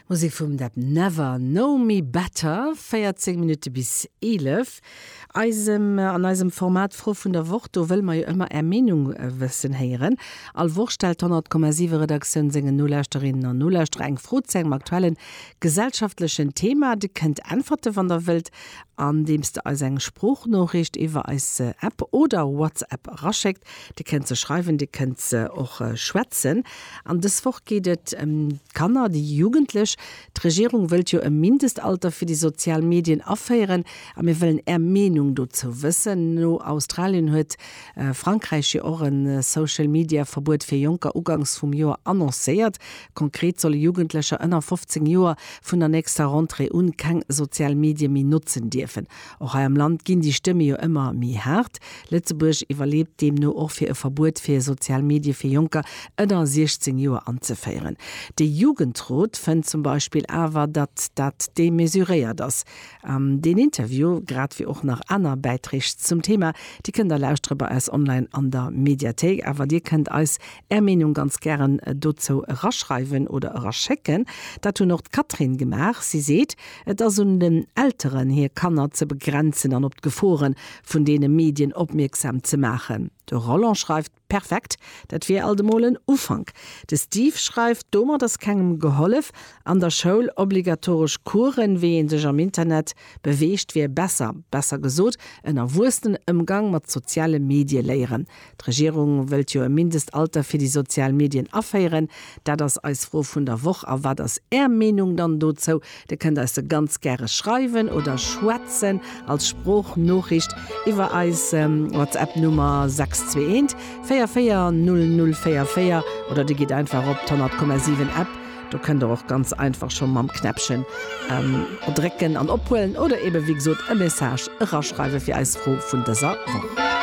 Musek vum Deb Never Know Me Better, 14 Minutte bis 11. Eisem, an eisem Format d'Fro vun der Woch, do wëlle mer jo ëmmer Är Meenung wëssen héieren. All Woch stellt d'Honnertkommasiwe Redaktioun sengen Nolauschterinnen an Nolauschterer eng Fro zu engem aktuellen gesellschaftlechen Thema. Dir kënnt äntwerte wann der wëllt, andeems der eis eng Sproochnoriicht iwwer eis App oder WhatsApp eraschéckt. Dir kënnt se schreiwen, Dir kënnt se och schwätzen. An dës Woch geet et ëm d'Kanner, déi Jugendlech. D'Regierung wëllt jo e Mindestalter fir déi sozial Medien aféieren. A mir wëllen Är Meenung dozou wëssen. No Australien huet Frankräich jo och e Social-Media-Verbuet fir Jonker ugangs vum Joer annoncéiert. Konkret solle Jugendlecher ënner 15 Joer vun der nächster Rentrée un keng sozial Medie méi notzen dierfen. Och hei am Land ginn déi Stëmme jo ëmmer méi haart. Lëtzebuerg iwwerleet deemno och fir e Verbuet fir sozial Medie fir Jonker ënner 16 Joer anzeféieren. De Jugendrot fënnt zum Beispill awer, datt dat demesuréiert ass. Deen Interview, grad wéi och nach aner Bäiträg zum Thema, déi kënnt der lauschtere bei eis online an der Mediathéik. Awer dir kënnt eis är Meenung ganz gären dozou eraschreiwen oder eraschécken. Dat hunn och d'Catherine gemaach. Si seet, Et ass un den Elteren, hir Kanner ze begrenzen an op d'Gefore vun deene Medien opmierksam ze maachen. De Roland schreift, Perfekt, dat wier alt emol en Ufank. De Steve schreift, Domat ass kengem gehollef. An der Schoul obligatoresch Coursen, wéi ee sech am Internet beweegt, wier besser. Besser gesot, en erwuessenen Ëmgang mat soziale Medie léieren. D'Regierung wëllt jo e Mindestalter fir déi sozial Medien aféieren. Dat ass eis Fro vun der Woch. A wat ass Är Meenung dann dozou? Dir kënnt eis se ganz gäre schreiwen oder schwätzen als Sproochnoriicht iwwer eis WhatsApp-Nummer 621 44 00 44 oder Dir gitt einfach op d'100,7-App. Do kënnt Der och ganz einfach scho mam Knäppchen drécken an ophuelen oder eebe wéi gesot e Message eraschreiwe fir eis Fro vun dëser Woch.